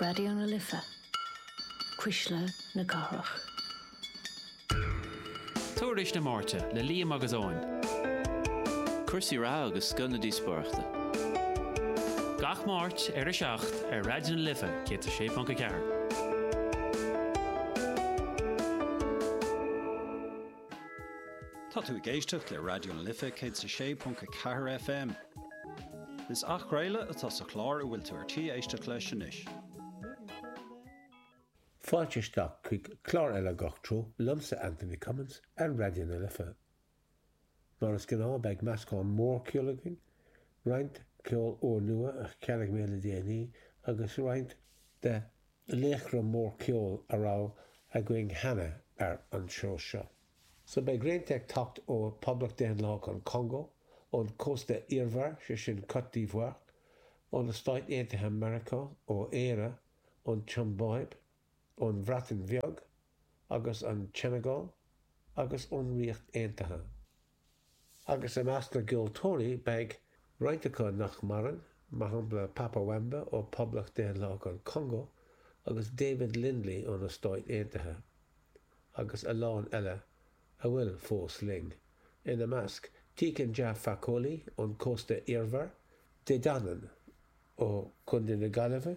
Raidió na Life, Cuisle na Cathrach. Tuairisc na Máirte le Liam agus Eoin. Cúrsaí reatha agus scoth na díospóireachta. Gach Máirt ar 7 ar Raidió na Life 106.4. Tá tú ag éisteacht le Raidió na Life 106.4 FM. Is athchraoladh atá sa chlár a bhfuil tú ar tí éisteacht leis anois. Fáilte isteach chuig clár eile Gach Treo liomsa, Anthony Cummins, ar Raidió na Life. Mar is gnáth beidh meascán mór ceoil againn, roinnt ceol úr nua a cheannaigh mé le déanaí agus roinnt de laochra mór ceoil a raibh againn cheana ar an seó seo. So beidh roinnt ag teacht ó Poblacht Daonlathach an Chongó, ón Cósta Eabhair, sé sin Côte d'Ivoire, ó na Stáit Aontaithe Meiriceá, ó Éire, ón tSiombáib, ón Bhreatain Bheag agus an tSeineagáil agus ón Ríocht Aontaithe. agus i measc na gceoltóirí beidh roinnt acu nach maireann, mar shampla Papa Wemba ó Poblacht Daonlathach an Chongó agus David Lindley ó na Stáit Aontaithe, agus a lán eile a bhfuil fós linn, ina measc Tiken Jah Fakoly ón Cósta Eabhair, De Danann ó Chontae na Gaillimhe,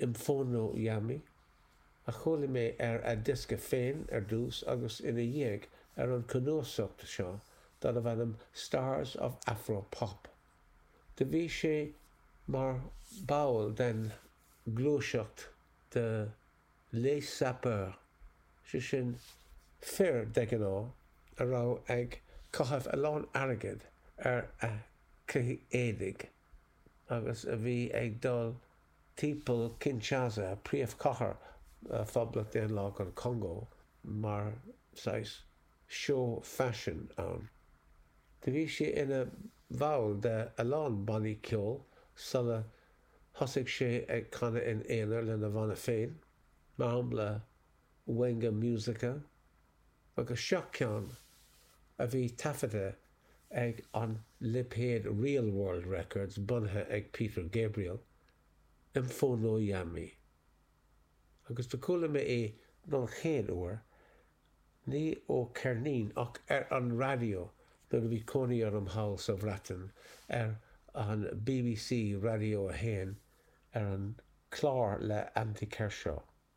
M'fono Yami, a chuala mé ar a' diosca féin ar dtús agus ina dhiaidh ar an cnuasacht seo darbh ainm Stars of Afro Pop. Do bhí sé mar ball den ghluaiseacht de Les Sapeurs, sé sin, fir, de ghnáth, a raibh ag caitheamh a lán airgid ar a chuid éadaigh. agus a bhí ag dul timpeall Kinshasa, príomhchathair Phoblacht Daonlathach an Chongó, mar saghas seó faisin ann. Do bhí sé ina bhall de a lán bannaí ceoil sula thosaigh sé ag canadh in aonar lena bhanna féin, mar shampla Wenge Musica, agus seo ceann a bhí taifeadta ag an lipéad Real World Records bunaithe ag Peter Gabriel, M'fono Yami. Agus do chuala mé é don chéad uair, ní ó ceirnín ach ar an raidió nuair a bhí cónaí orm thall sa Bhreatain ar an BBC Raidió 1 ar an clár le Andy Kershaw.